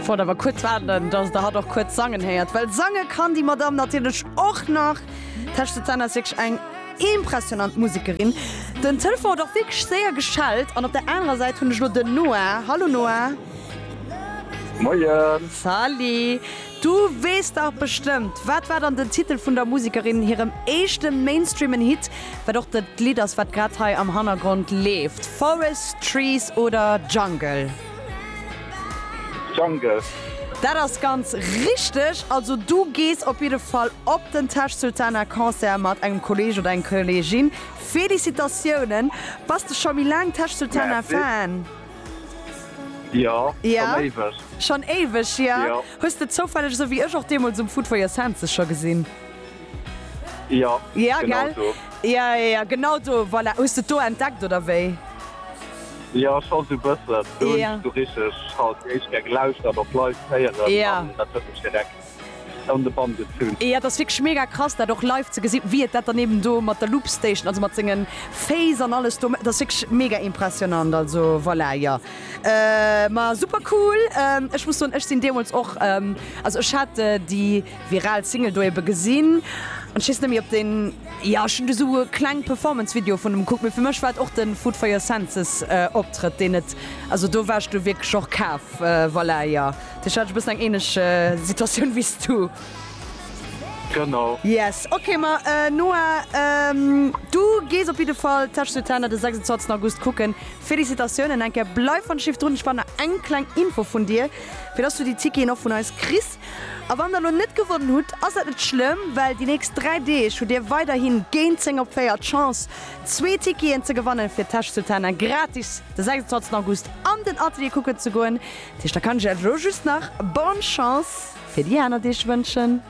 Wollt awer kuerz waarden, dass der hatt och kuerz sangen héiert, well sange kann déi Madamm natierlech och nach. Tesch Susanne ass wierklech eng impressionant Musekerin. Den Telefon huet och wierklech séier geschellt an op der anerer Säit hunn ech lo den Noah. Hallo Noah. Moien. Salut. Du weess dach bestëmmt, wat war dann den Titel vun der Musekerin hirem éischte mainstreamen Hit, wat och dat Lidd ass, wat grad hei am Hannergrond leeft, Forest, Trees oder Jungle? Jungle. Dat ass ganz richteg, also du gees op jidde Fall op den Tash Sultana Concert mat engem Kolleg oder eng Kollegin. Félicitatiounen! Bass de scho méi laang Tash Sultana Fan? Merci. Jo, schon éiweg. Schon éiweg, jo. Hues de zoufälleg esou wéi ech och deemools um Food for Your Senses scho gesinn? Ja, ja gell ja, ja, ja genau do voilà. Hues de do entdeckt oder wéi? Ja ech hat bëssen du richg hat éischt ger gelauscht dat op live héieren ja dat huet mech direkt an de Bann gezunn. Ja dat ass wierklech mega krass dat och live ze gesinn, wéi et dat dann eben do mat der Loopstation, also mat sengen Féiss an alles do dat ass wierklech mega impressionnant, also voilà jo. Ma super cool, ech muss soen ech sinn deemools och, also ech hat déi, Viral Single do ebe gesinn. An ech weess net méi op den, jo ech hunn do sou e kleng Performance Video vun em kuckt, mee fir mech war et och den Food for your senses Optrëtt deen et, also do war ech du wierklech och kaf, voilà jo do hat ech e bëssen eng ähnlech Situatioun wéi s du. Genau. Yes ok ma Noa du gees op jidde Fall Tâche sur Terre de 26 August kucken. Félicitatiounen eng Kéier, bleif an Schiff drun, ech brauch nach eng kleng Info vun dir fir dass du déi Ticketen och vun eis kriss. A wann der lo net gewonnen hutt, ass dat net schlëmm, well déi nächst 3 Deeg hutt dir weiderhin géint 10 op 4 d'Chance, zwee Ticketen ze gewannen, fir d'Täsch zu Thanet gratis de 26 August an den Atelier kucken ze goen. Dat heescht, da kann ech iech elo just nach Bonne Chance fir déi aner Deeg wënschen.